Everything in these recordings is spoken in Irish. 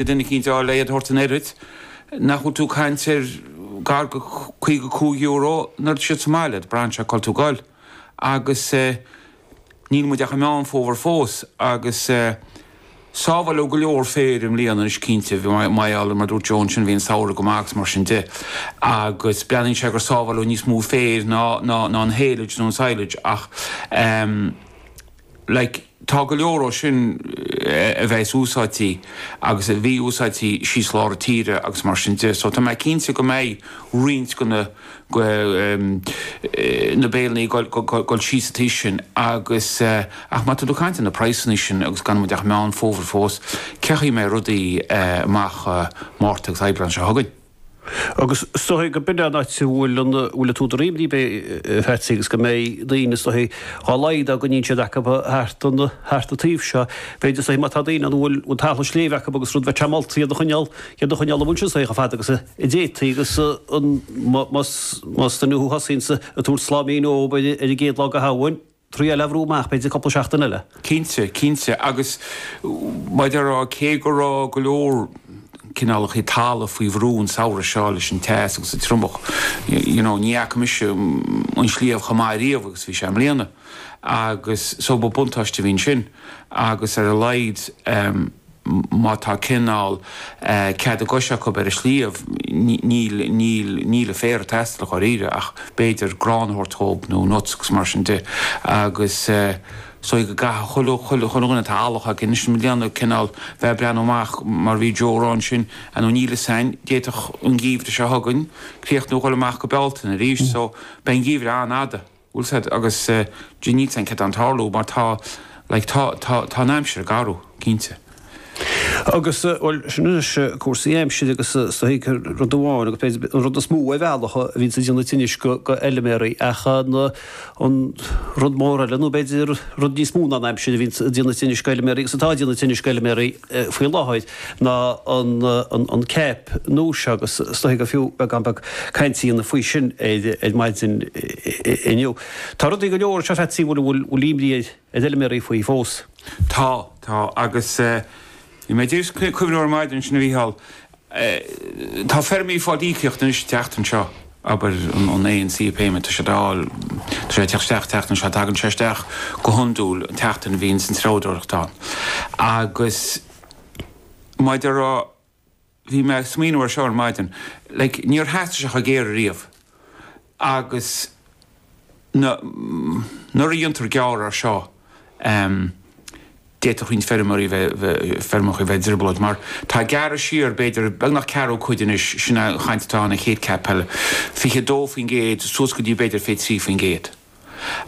Duine eicínt le hiad a thabhairt an oiread nach bhfuil tú caint ar gar go caoga cúig euro nuair atá siad sa mbaile agat braitheann sé cá bhfuil tú goil agus níl muid ach i Meán Fómhair fós agus sábháileadh go leor féir i mbliana anois cinnte bhí Maigh Eo mar dúirt Joe ansin bhí an samhradh go maith agus mar sin de agus breathnaíonn sé gur sábháileadh níos mó féir ná ná ná an haylage nó an silage ach Like, tá go leor dhó sin a bheas úsáidtí agus a bhí úsáidtí síos lár na tíre agus mar sin de. So tá mé cinnte go mbeidh roinnt go na na béilní goil síos an taobh sin agus ach má tá tú caint ar na praghsanna sin agus gan muid ach Meán Fómhair fós, cén chaoi a mbeidh rudaí amach Márta agus Aibreán seo chugainn. Agus is dóigh go b'in é an áit a bhfuil an bhfuil an t-údar imní, beidh, a Pheatsaí, agus go mbeidh daoine, is dóigh, dhá laghad dá gcoinníonn siad acu thart an, thart an taobh seo. B'fhéidir, is dóigh, má tá daoine ann a bhfuil an talamh sléibhe acu agus rud, bheith tréan molta iad a choinneáil, iad a choinneáil amuigh ansin, is dóigh, chomh fada agus a d'fhéadfaí agus an, más, más duine thú thosaíonns ag tabhairt sláimín dhób ar an gcéad lá go Shamhain, Triail a bhrú amach b'fhéidir cúpla seachtain eile. Cinnte, cinnte, agus mar a déarfá, cé go raibh go leor cineálacha talaimh faoi bhrú an samhradh seo leis an teas agus an triomach, you know, ní fhaca mise an sliabh chomh maith riamh agus bhí sé i mbliana, agus so ba buntáiste a bhí ansin, agus ar a laghad, má tá cineál cead a gcos acu ar an sliabh, níl, níl, níl an féar ag teastáil dháiríre ach b'fhéidir grán a thabhairt dhób nó nuts agus mar sin de agus so í go gcaithfidh chuile, chuile, chuile dhuine atá eallach aige anois i mbliana cineál bheith ag breathnú amach mar bhí Joe ag rá ansin you know níl fhios a'inn, d'fhéadfadh an geimhreadh seo chugainn críochnú dhul amach go Bealtaine arís so beidh an geimhreadh an-fhada. bhfuil siad agus G níl siad an tarlú mar tá like tá tá tá an aimsir ag athrú cinnte. Agus bhuel sin anois cúrsaí aimsire agus is dóiche rud amháin agus b'fhéidir an rud is mó ar bhealach a bhíonns ag déanamh tinnis go go fheiliméaraí ach an an rud mór eile nó b'fhéidir rud níos mó ná an aimsir a bhíonns ag déanamh tinnis go fheiliméaraí agus atá déanamh tinnis go fheiliméaraí faoi láthair ná an CAP nua seo agus is dóiche go fiú beagán beag cainte a dhéanamh faoi sin ar maidin inniu. Tá rudaí go leor anseo Pheatsaí bhfuil bhfuil imní ar ar fheilméaraí faoi fós? Tá, tá agus bhí mé just ag cuimhneamh air ar maidin ansin a Mhícheál Eh, tá feirmeoirí ag fáil íocaíocht anois an tseachtain seo, abair, an, an ANC payment, tá siad á fháil, tá sé ag teacht isteach an tseachtain seo, tagann sé isteach go hiondúil an tseachtain a bhíonns an treabhdóireacht ann. Agus mar a déarfá, bhí mé ag smaoineamh ar seo ar maidin, like, níor theastaigh sé chomh géar ariamh. Agus na, nuair a déantar gearradh air seo, d'fhéadfadh roinnt feirmeoirí a bheith, feirmeacha a bheith i dtrioblóid mar tá gearradh siar b'fhéidir beagnach ceathrú cuid anois, sin an chaint atá ann an chéad CAP eile, 22% suas go dtí b'fhéidir 23%.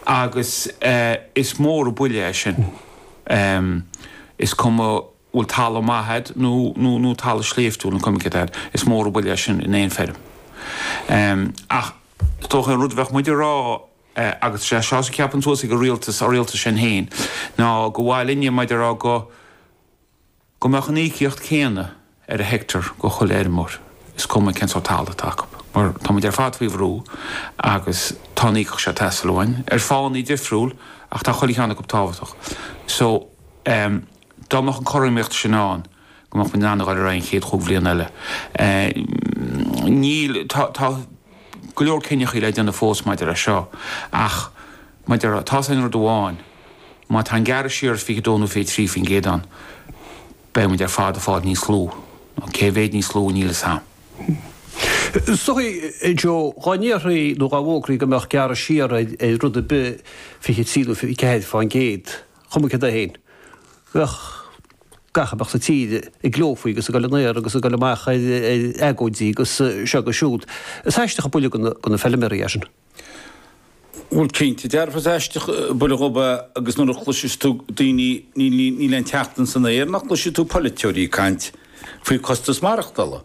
Agus is mór an buille é sin. Is cuma bhfuil talamh maith agat nó nó talamh sléibhtiúil nó coimíneacht agat is mór an buille é sin in aon feirm. Ach is dócha an rud a bheadh muid a rá agus is é seo a cheapann suas ag an rialtas, ár rialtas sin féin, ná gur mhaith linne muid a rá go go mbeadh an íocaíocht céanna ar an hectare go chuile fheirmeoir is cuma cén sórt talamh atá acu. Mar tá muid ar fad faoi bhrú agus tá an íocaíocht seo ag teastáil uainn ar fháthannaí difriúil ach tá chuile cheann acu tábhachtach. So, eh. Dá mbeadh an cothromaíocht sin ann go mbeadh muid in ann a ghoil ar aghaidh an chéad chúig bhliain eile. Níl, tá, tá go leor cinneachaí le déanamh fós maidir leis seo ach maidir le, tá's a'inn rud amháin, má tá an gearradh siar is fiche dó nó fiche trí faoin gcéad ann beidh muid ar fad ag fáil níos lú, nó cé mhéid níos lú, níl sé socraithe. Joe, dhá ndéarfaí nó dhá bhfógrófaí go mbeadh gearradh siar ar rud ar bith fiche trí nó fiche ceathair fán gcéad, Cuma céard é féin, bheadh gach a mbeadh sa tír ag gleo faoi agus ag gabhail in aer agus ag gabhail amach ar agóidí agus seo agus siúd. Is aisteach an buille go na feilméaraí é sin. Bhuel cinnte, dearfa is aisteach an buille dhóibh é agus nuair a chloiseas tú daoine, níl aon tseachtain san aer nach gcloisfidh tú polaiteoirí ag caint faoi costas maireachtála.